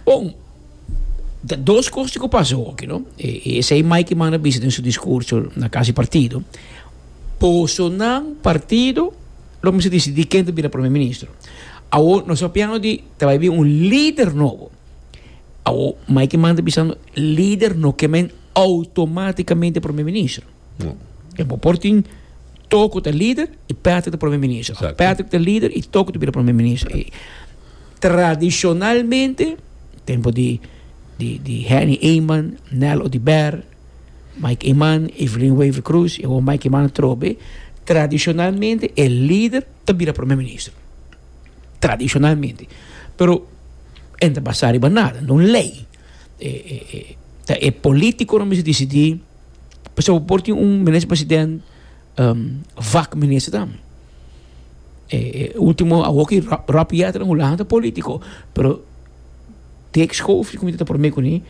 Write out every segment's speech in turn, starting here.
Bon, ta dos cosnan cu pasa hopi, no? E, e esey mai ki manda bisa den su discurso na Casa di Partido, Bosonan partido lo mester dicidi ken ta bira Premier Ministro. Awor nos ta piano di ta bai bin un lider nobo. Awor, mai ki manda bisando, lider no ke men automaticamente Premier Ministro. No. E bo por tin Toko ta lider y Patrick ta Premier Ministro. Exacto. Patrick ta lider y Toko ta bira Premier Ministro. E, Tradishonalmente, tempu di di Henny Eman, Nel Odiber, Mike Eman, Evelyn Wavy Cruz i awor Mike Eman atrobe, tradishonalmente e lider ta bira Prome Minister. Tradishonalmente. Pero e no ta basá riba nada, na un lei. E ta e polítikonan mester disidí pasobra bo por tin un Minister President vak ministernan e ultimo awoki Rob Jeter and hulahan ta politico pero Dick Schoof di comité ta prome kuni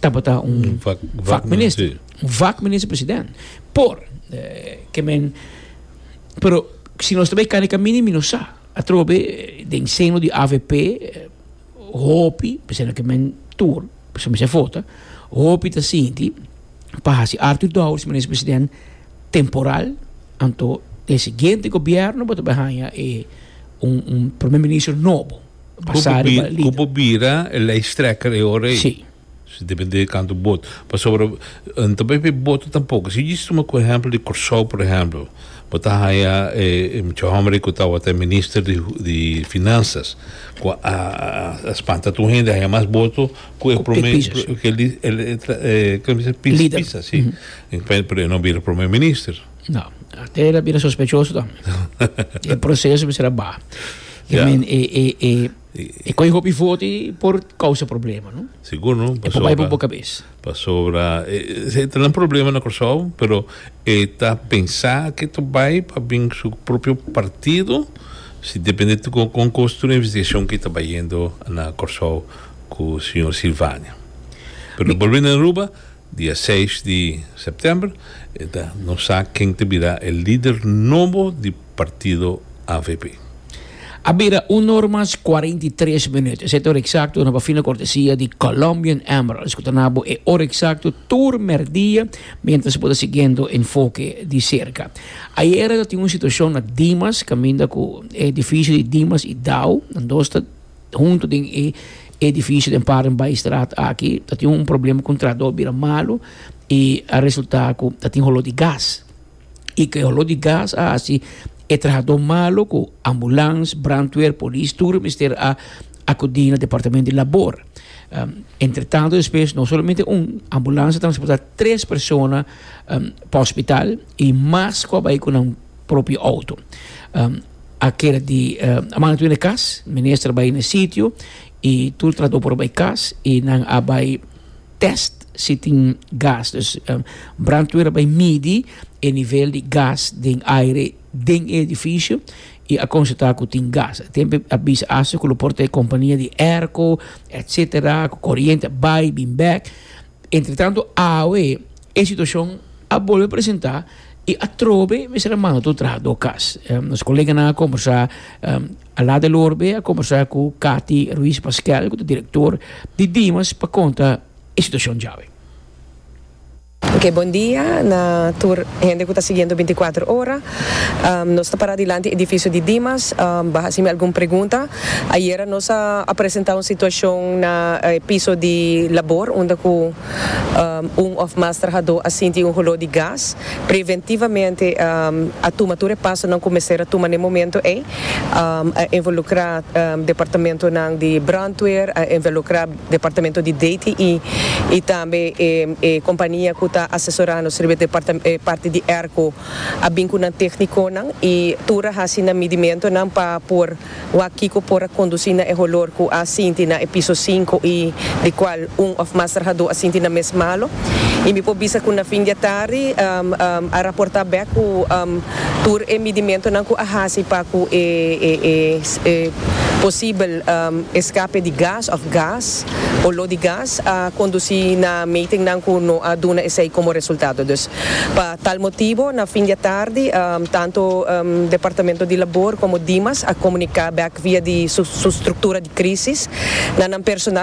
tabata un vak minister un vak minister president por ke men pero si nos ta bay kane kamini mi no sa atrobe den seno di avp hopi p'esei na ke men tur p'esei mi sa fota hopi ta sinti pa hasi Arthur Dowers minister president temporal anto e siguiente gobierno bo ta bai haya e un, un primer ministro nobo basado ba lider. Kubo bira e lijsttrekker e ora ei. Si. Si depende kantu bot. Pasobra N ta bai pe boto tampoko. Si djis tuma ku ehempel di Kòrsou por ehempel. Bo ta haya e mucha hòmber ei ku tabata e minister di di finansas ku a spanta tur hende a haya mas boto. Cu e prome pisa si pero e no bira prome minister. No, te era bira sospechoso tambe. e proceso bisa era baha. I mean e coge hopi voto y por causa problema no. Sigur no. E por bay por bo cabes. Pasobra e ta nan problema na Curaçao pero e ta pensa cu e ta bay pa bin su propio partido si depende con cos tur investigacion cu e ta bayendo na Curaçao. cu Señor Sylvania. Pero lo bolbe na Aruba dia seis di september e ta no sa ken ta bira e lider nobo di partido avp. A bira un nor mas cuarenta y tres minuut. Esey ta ora exacto na bafina cortesia di Colombian Emeralds cu ta na bo e ora exacto tur merdia mientras bo ta siguiendo Enfoque di cerca. Ayera ta tin un situacion na Dimas caminda cu e edificio di Dimas y Dow nan dos ta. Huntu den e edifisio den Paardenbaaistraat aki ta tin un problema ku traador bira malu i a resultá ku ta tin holó di gas. I ku e holó di gas a hasi e trahadó malu ku ambulans, brandweer, polis tur mester a akudí na departamento di labor. Entretanto despues no solamente un ambulans a transportá tres persona pa hospital i mas ku a bai ku nan propio outo. a keda di a manda tur na e kas minister a bai na e sitio i tur trahador por a bai kas i nan a bai test si tin gas dus brandweer a bai midi e nivel di gas den aire den e edifisio i a konstatá ku tin gas a tempe a bisa asta ku lo por ta e kompania di airco etsetera ku koriente a bai bin bèk. Entretanto awe e situacion a bolbe presenta y atrobe mester a manda tur traha door cas. Nos coleganan a conversa, a laat el hoor be a conversa cu Cathy Ruiz Pasquel cu ta director di Dimas pa conta e situacion djawe. Ok, bon dia na tur hende cu ta siguiendo binticuatro ora. Nos ta pará dilanti e edifisio di Dimas pa haci mi algun pregunta. Ayera nos a presentá un situacion na e piso di labor unda cu un of mas trahadó a sinti un holó di gas. Preventivamente a tuma tur e pasonan cu mester a tuma n'e momento ei. A involucrá departamentonan di brandweer, a involucrá departamento di DTI y tambe e compania cu ta asesorá nos riba e parti di airco. a bin cu nan tecniconan y tur a haci nan midimentonan pa por wak kico por a conduci na e holor cu a sinti na e piso cinco y di cual un of mas trahador a sinti nan mes malo. Y mi por bisa cu na fin di e tardi a raporta bek cu tur e midimentonan cu a haci pa cu e posibel escape di gas of gas, olor di gas, a conduci na metingnan cu no a duna esey como resultado. Dus pa. Tal motibu, na fin di e tardi, tantu Departamento di Labor komo Dimas a komuniká bèk via di su struktura di krísis na nan personal,